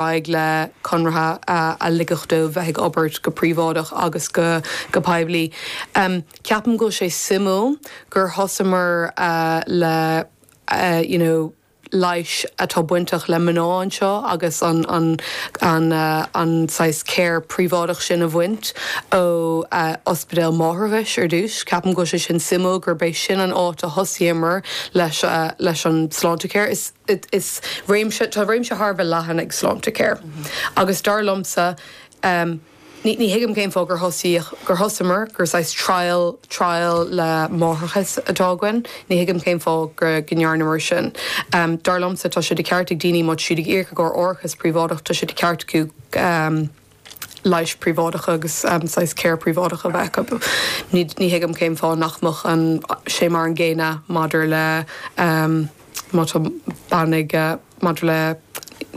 aghaidh le conraithe a ligfeadh dóibh bheith ag obair go príobháideach agus go poiblí. Ceapaim go bhfuil sé suimiúil gur thosamar le you know leighis atá bainteach le mná anseo agus an saghas care príobháideach sin a bhaint ó ospidéal máithreachais ar dtús. Ceapaim go bhfuil sé sin suimiúil gurb é sin an áit a thosaíomar leis an Sláintecare. Is. is réimse, tá réimse thar a bheith leathan ag Sláintecare agus dar liomsa, ní, ní thuigim cén fáth gur thosaíodh, gur thosamar, gur saghas trial, trial le máithreachas atá againn, ní thuigim cén fáth go, go ndearnamar sin. Dar liomsa, tá sé de cheart ag daoine, má tá siad ag íoc i gcomhair árachas príobháideach, tá sé de cheart acu, leighis príobháideacha agus saghas care príobháideach a bheith acu. Ní thuigim cén fáth nach mbeadh sé mar an gcéanna maidir le má tá bean, maidir le,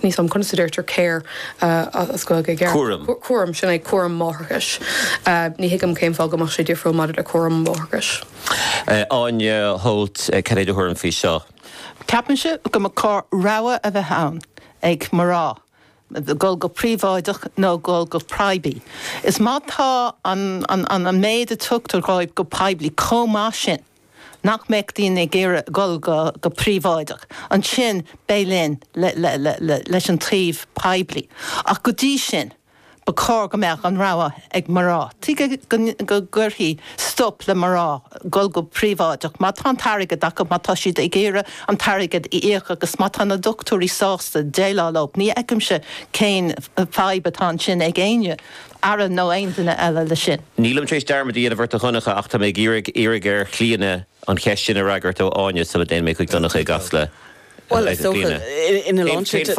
níl 's agam conas a deirtear care as Gaeilge i gceart? Cúram. Cúram, sin é, cúram máithreachais. Ní thuigim cén fáth go mbeadh sé difriúil maidir le cúram máithreachais. Áine Holt, cad é do thuairim faoi seo? Ceapaimse go mba chóir rogha a bheith ann ag mná. dul go príobháideach nó dul go poiblí. Is má tá an méid a tugtar dóibh go poiblí chomh maith sin nach mbeadh daoine ag iarraidh dul go príobháideach, ansin beidh linn leis an taobh poiblí. Ach go dtí sin, Ba chóir go mbeadh an rogha ag mná. Tuige go gcuirfí stop le mná dul go príobháideach má tá an t-airgead acu, má tá siad ag iarraidh an t-airgead a íoc agus má tá na dochtúirí sásta déileáil leo? Ní fheicimse cén fadhb atá ansin ag éinne, Aire nó aon duine eile, leis sin. Nílim tar éis dearmad a dhéanamh ort a Dhonncha ach tá mé ag iarraidh iarraidh ar Chlíodhna an cheist sin a fhreagairt ó Áine sula dtéann mé chuig Donncha i gCasla. Bhuel, is dócha ina lán sin de.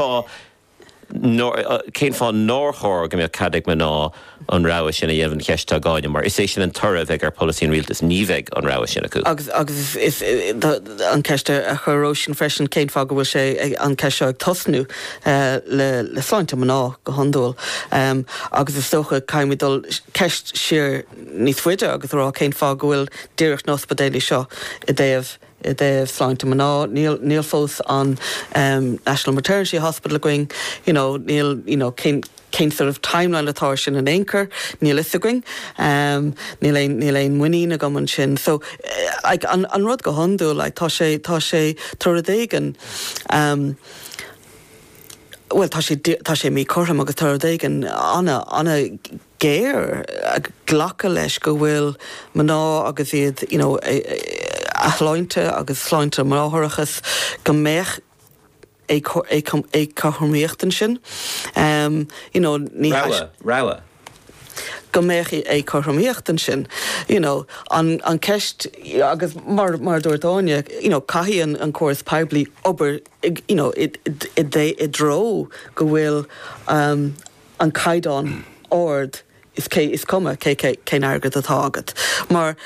Cén fáth nár chóir go mbeadh cead ag mná an rogha sin a dhéanamh an cheist atá ag Áine, mar is é sin an toradh a bheidh ar pholasaí an rialtais, ní bheidh an rogha sin acu. Agus is an cheist a chuir Róisín freisin, cén fáth go bhfuil sé, an cheist seo, ag tosnú le sláinte mná go hiondúil. Agus is dócha, caithfimid dul ceist siar níos faide agus a rá cén fáth go bhfuil díreach na hospidéilí seo i dtaobh I dtaobh sláinte mná, níl, níl fós an ehm National Maternity Hospital againn, you know, níl, you know, cén, cén sort of timeline atá ar sin in aon chor, níl 'fhios againn. Ehm níl aon, níl aon mhuinín agam ansin. So like an, an rud go hiondúil, like tá sé, tá sé, tá rud éigin ehm, bhuel tá sé, tá sé míchothrom agus tá rud éigin ana, ana, géar, ag glacadh leis go bhfuil mná agus iad you know a sláinte agus sláinte máithreachais go mbeadh éagcothromaíocht ansin you know ní go mbeadh éagcothromaíocht ansin you know an ceist agus mar a dúirt Áine you know caithfidh an an córas poiblí obair you know i dtreo go bhfuil an caighdeán ard is cuma cé cén airgead atá agat. Mar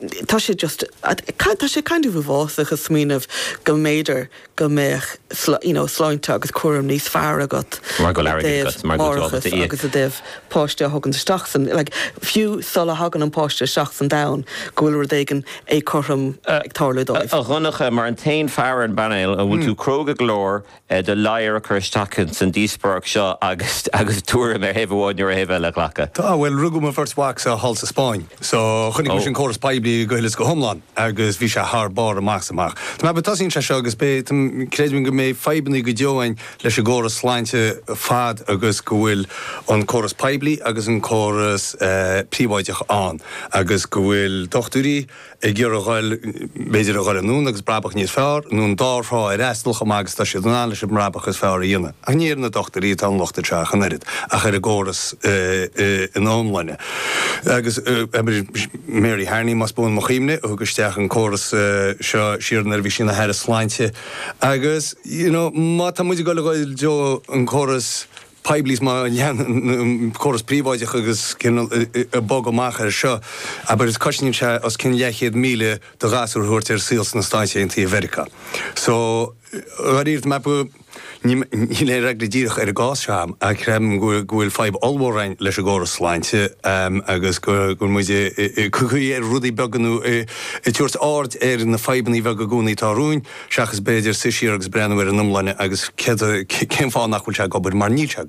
tá sé just tá sé kind of uafásach a smaoineamh go mb'fhéidir go mbeadh you know sláinte agus cúram níos fearr agat mar go bhfuil árachas agat agus i dtaobh páiste a thagann isteach sa like fiú sula thagann an páiste isteach sa domhan go bhfuil rud éigin éagcothrom ag tarlú dóibh. A Dhonncha, mar an t-aon fear ar an bpainéal, an bhfuil tú cróga go leor do ladhar a chur isteach ins an díospóireacht seo agus agus tuairim ar thaobh amháin nó ar thaobh eile a ghlacadh. Tá, bhuel, rugadh mo bheirt mhacsa thall sa Spáinn, so chonaic mise an córas poiblí go huile is go hiomlán agus bhí sé thar barr amach is amach. Tá mé ag ceapadh tosaíonn sé seo agus beidh, tá, creidim go mbeidh fadhbanna go deo againn leis an gcóras sláinte fad agus go bhfuil an córas poiblí agus an córas, eh, príobháideach ann agus go bhfuil dochtúirí, ag iarraidh a dhul, b'fhéidir, a dhul anonn agus brabach níos fearr, nó an dá thrá a fhreastal chomh maith agus atá siad in ann leis an mbrabach is fearr a dhéanamh. Ach ní ar na dochtúirí atá an locht seo ach an oiread, ach ar an gcóras ina iomláine. Agus Mary Harney, más buan mo chuimhne, a thug isteach an córas seo siar nuair a bhí sí ina hAire Sláinte. Agus, you know, má tá muid ag dul a dhul i dtreo an córas, poiblí is má leanann an córas príobháideach agus cineál ag bogadh amach air seo, abair, is cosnaíonn sé os cionn leathchéad míle do ghasúr a thabhairt ar an saol sna Stáit Aontaithe Mheiriceá. So, dháiríre, tá mé ag ceapadh, níl aon fhreagra díreach ar an gcás seo agam ach creidim go bhfuil fadhb ollmhór againn leis an gcóras sláinte agus go bhfuil muid ag piocadh ar rudaí beaga nó ag tabhairt aird ar na fadhbanna beaga i gcónaí atá romhainn. seachas b'fhéidir suí siar agus breathnú ar an iomláine agus céard, cén fáth nach bhfuil sé ag obair, mar níl sé ag.